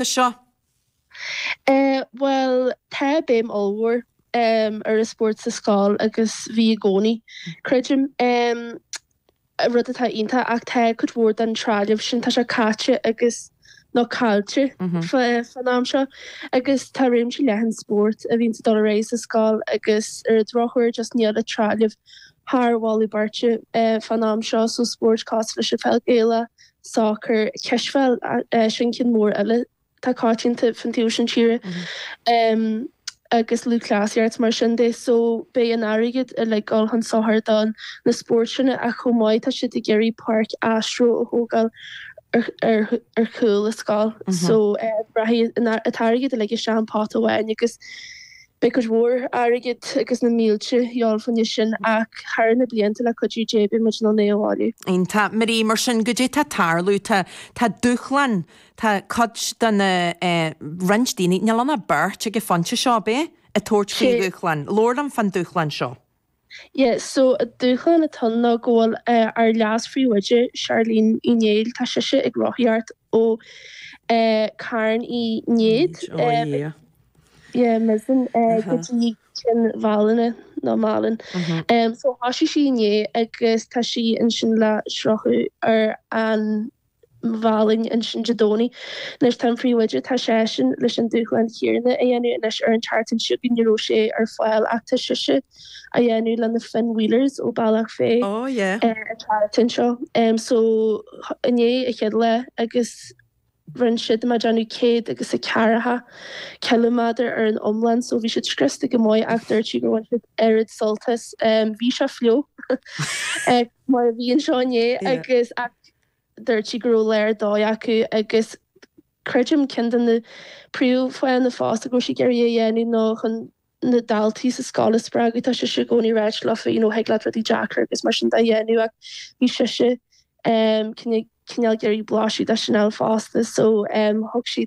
Tá seo. Bhuel, tá béim ollmhór ar an spórt sa scoil agus bhí i gcónaí, creidim. Rud atá iontach ach tá cuid mhór den trealamh sin, tá sé caite agus, nó caillte fán am seo. Agus tá réimse leathan spórt a bhíonn ag dul ar aghaidh sa scoil agus ar an drochuair just níl an trealamh thar mholadh beirte fán am seo, so spóirt cosúil leis an pheil Ghaelach, sacar, cispheil, sin ceann mór eile atá coitianta fán taobh sin tíre, agus lúthchleasaíocht mar sin de. So, beidh an airgead uilig ag dul chun sochair do na spóirt sin ach chomh maith tá siad ag iarraidh páirc astro a thógáil ar chúl an scoil. So, rachaidh an t-airgead uilig isteach an pota amháin agus. Beidh cuid mhór airgid agus na mílte de dhíobháil fá choinne sin ach thar na blianta le cuidiú Dé beidh muid in ann é a bhailiú. Iontach. Marie mar sin cad é atá ag tarlú, tá tá dúshlán, tá cuid de na eh roinnt daoine, níl ann ach beirt ag an phointe seo, b'é? ag tabhairt faoi dhúshlán. Labhair liom faoin dúshlán seo. Yeah so an dúshlán atá ann ná go bhfuil ár leas-phríomhoide Charlene Uí Néill, tá sise ag rothaíocht ó Carn Uí Néid, yeah Mizen, go dtí Cionn Mhálanna nó Málainn so thoisigh sí inné agus tá sí ansin le sroicheadh ar an. Mhálainn ansin Dé Domhnaigh. Anois tá an príomhoide, tá seisean leis an dúshlán chéanna a dhéanamh anois ar an tseachtain seo chugainn, ní raibh sé ar fáil ach tá sise á dhéanamh le na Finn Wheelers ó Bealach Féich Oh yeah. ar an tseachtain seo. So inné an chéad lá agus rinne siad, má déanamh céad agus a ceathracha ciliméadar ar an iomlán so bhí siad scriosta go maith ach dúirt sí gur bhain siad oiread sult as. Bhí sé fliuch mar a bhí anseo inné agus, ach Dúirt sí go raibh léar dóigh acu agus creidim ceann de na príomhfháthanna fosta go raibh siad ag iarraidh a dhéanamh ná chun na daltaí sa scoil a spreagadh. Tá sise i gcónaí ag ráit leofa, you know, thig leat rudaí deacair agus mar sin de a dhéanamh ach bhí sise um, cineál ag iarraidh blaiseadh de sin a fháil fosta so um thug sí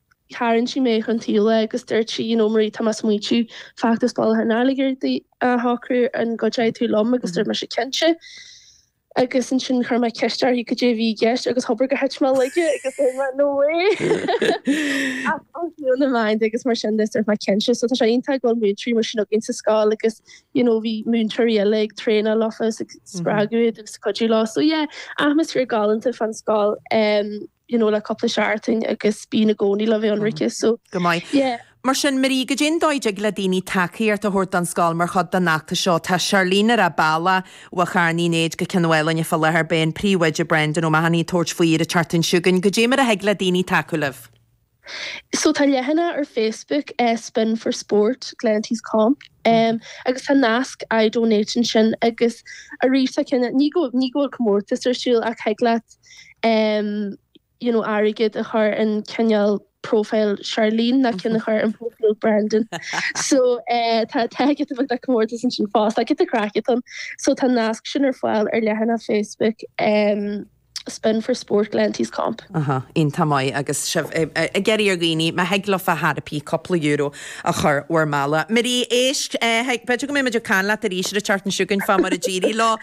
Tharraing sí mé chun taoibhe agus dúirt sí, you know Marie, tá mé ag smaointiú, feachtas bailithe an airgid a shocrú, an gcuideoidh tú liom? Agus dúirt mise, cinnte. Agus ansin chuir mé ceist uirthi cad é a bhí i gceist agus hobair gur thit mé i laige agus dúirt mé, no way! Ach ó thaobh na meáin agus mar sin de dúirt mé, cinnte. So tá sé iontach go bhfuil múinteoirí mar sin againn sa scoil agus you know bhí múinteoirí eile ag traenáil leofa is ag spreagadh iad agus ag cuidiú leo. So yeah, atmaisféar galánta fán scoil. you know le cúpla seachtain agus bíonn i gcónaí le bheith ionraic so Go maith. yeah. Mar sin, Marie, cad é an dóigh a dtig le daoine tacaíocht a thabhairt don scoil mar chuid den fheachtas seo, tá Charlene ar a bealach ó Charn Uí Néid go Cionn Mhálanna fá láthair, beidh an príomhoide Brendan O'Mahony ag tabhairt faoi ar an tseachtain seo chugainn, cad é mar a thig le daoine tacú libh. So tá leathanach ar Facebook, Spin for Sport, Glenties Comp, agus tá nasc iDonate ansin agus arís tá cineál, ní go, ní go bhfuil comórtas ar siúl ach thig leat you know airgead a chur in cineál profile Charlene ná cinn a chur in profile Brendan. So tá tá giota beag comórtas ansin fosta, giota craic ag dul. So tá nasc sin ar fáil ar leathanach Facebook. Spin for Sport Glenties Comp. Iontach maith agus sibh ag iarraidh ar dhaoine má thig leofa ar chor ar bith cúpla euro a chur bhur mbealach. Marie, Éist, thig, b'fhéidir go mbeidh muid ag caint leat arís ar an tseachtain seo chugainn fá mar a d'éirigh leo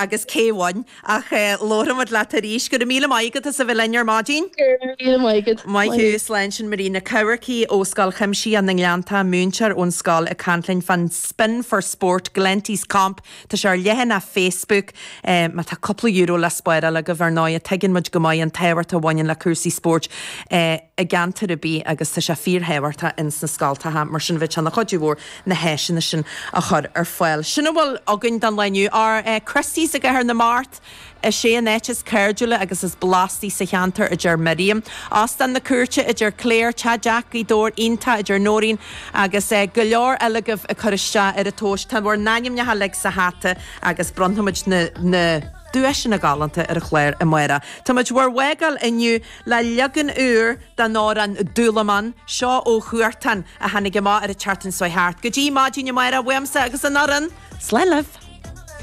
agus cé bhain ach labharfaidh muid leat arís. Go raibh míle maith agat as a bheith linn ar maidin. Go raibh míle maith agat. Maith thú, Slán sin Marie Nic Eachmharcaigh ó Scoil Chuimsitheach na nGleanntach, múinteoir ón scoil ag caint linn fán Spin for Sport Glenties Comp Tá sé ar leathanach Facebook. Má tá cúpla euro le spáráil agaibh, ar ndóighe, tuigeann muid go maith an tábhacht a bhaineann le cúrsaí spóirt i gceantar ar bith agus tá sé fíorthábhachtach ins na scoltacha, mar sin bheadh sé ina chuidiú mhór na háiseanna sin a chur ar fáil. Sin a bhfuil againn don lá inniu. Ár Christy's i gCathair na Mart! Is é an áit is cairdiúla agus is blastaí sa cheantar, a deir Miriam. Óstán na Cúirte, a deir Clare. Teach Jack, Gaoth Dobhair. Iontach, a deir Nóirín. Agus go leor eile agaibh ag cur isteach ar an duais. Tá bhur n-ainmneacha uilig sa hata agus bronnfaimid na duaiseanna galánta ar an chlár amárach. Táimid ag bhur bhfágáil inniu le leagan úr den amhrán Dúlamán, seo ó Huartan a tháinig amach ar an tseachtain seo thart. Go dtí maidin amárach, uaimse agus an fhoireann, slán libh!